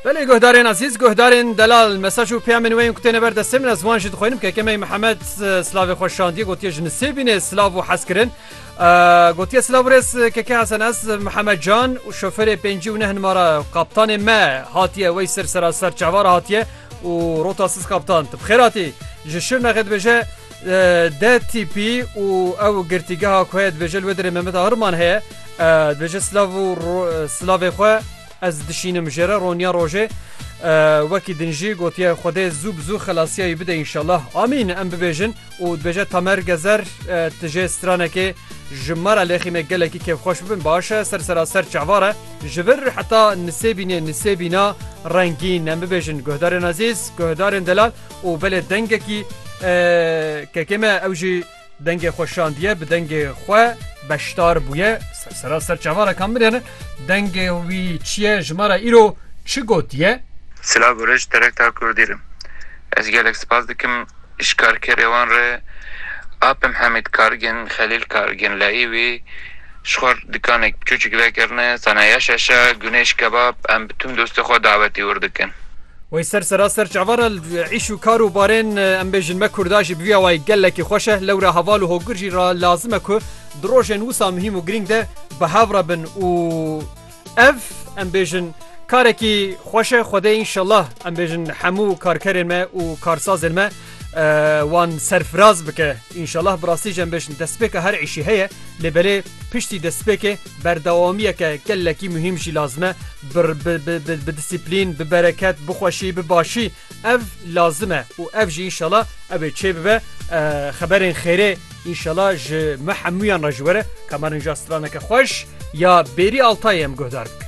Belê guhdarên ezîz, guhdarên delal mesaj û peyamên wê yên ku têne ber destê min ez wan jî dixwînim. Kekemeyî Mihemed silavê xwe şandiye gotiye ji nisêbînê silav û hezkirin. Gotiye silav û rêz Keke Hesen ez Mihemed Can û şoferê pêncî û neh nimara kaptanê me hatiye wey sir sera ser çavara hatiye û rota siz kaptan tu bi xêr hatî ji Şirnexê dibêje DTP û ew girtîgeha ku heye dibêje li wê derê Mehmet Ahirman heye. Dibêje silav û silavê xwe ez dişînim jê re roniya rojê. Wekî din jî gotiye Xwedê zû bi zû xelasiya wî bide înşellah. Amîn em bibêjin û dibêje Tamer Gezer tu jê stranekê ji me re lêxîme gelekî kêfxweş bibin baş e ser seraser çavar e. Ji vir heta nisêbînê nisêbîna rengîn em bibêjin guhdarên ezîz, guhdarên delal. û belê dengekî kekê me ew jî dengê xwe şandiye bi dengê xwe beşdar bûye sera ser çavalekan mirene dengê wî çiye ji me re îro çi gotiye Silav û rij terekta Kurdî re. Ez gelek spas dikim ji karkerê wan re Apim Hemîd Kargin, Xelîl Kargin, Leîwî, Ji xwe re dikaneke biçûçik vekirine, saneya şeşe, gunêj, kebab, em bi tim dostê xwe dawetê wir dikin. Wê ser sera ser çavan re li îş û kar û barên em bêjin me Kurda jî bi vî awayî gelekî xweş e. Lewra heval û hogur jî lazim e ku di rojên wisa muhîm û girîng de bi hev re bin û Ev em bêjin karekî xweş e Xwedê înşellah em bêjin hemû karkerên me û karsazên me wan serfiraz bike înşellah bi rastî jî em bêjin destpêka her îşî heye lê belê piştî destpêkê berdewamiyeke gelekî muhîm jî lazim e bi disiplîn bi bereket bixweşî bi başî Ev lazim e û ev jî înşela ew ê çêbibe. Xeberên xêrê înşela ji me hemûyan re ji were. Kamarin ja straneke xweş ya Bêrî Altayê em guhdar bike.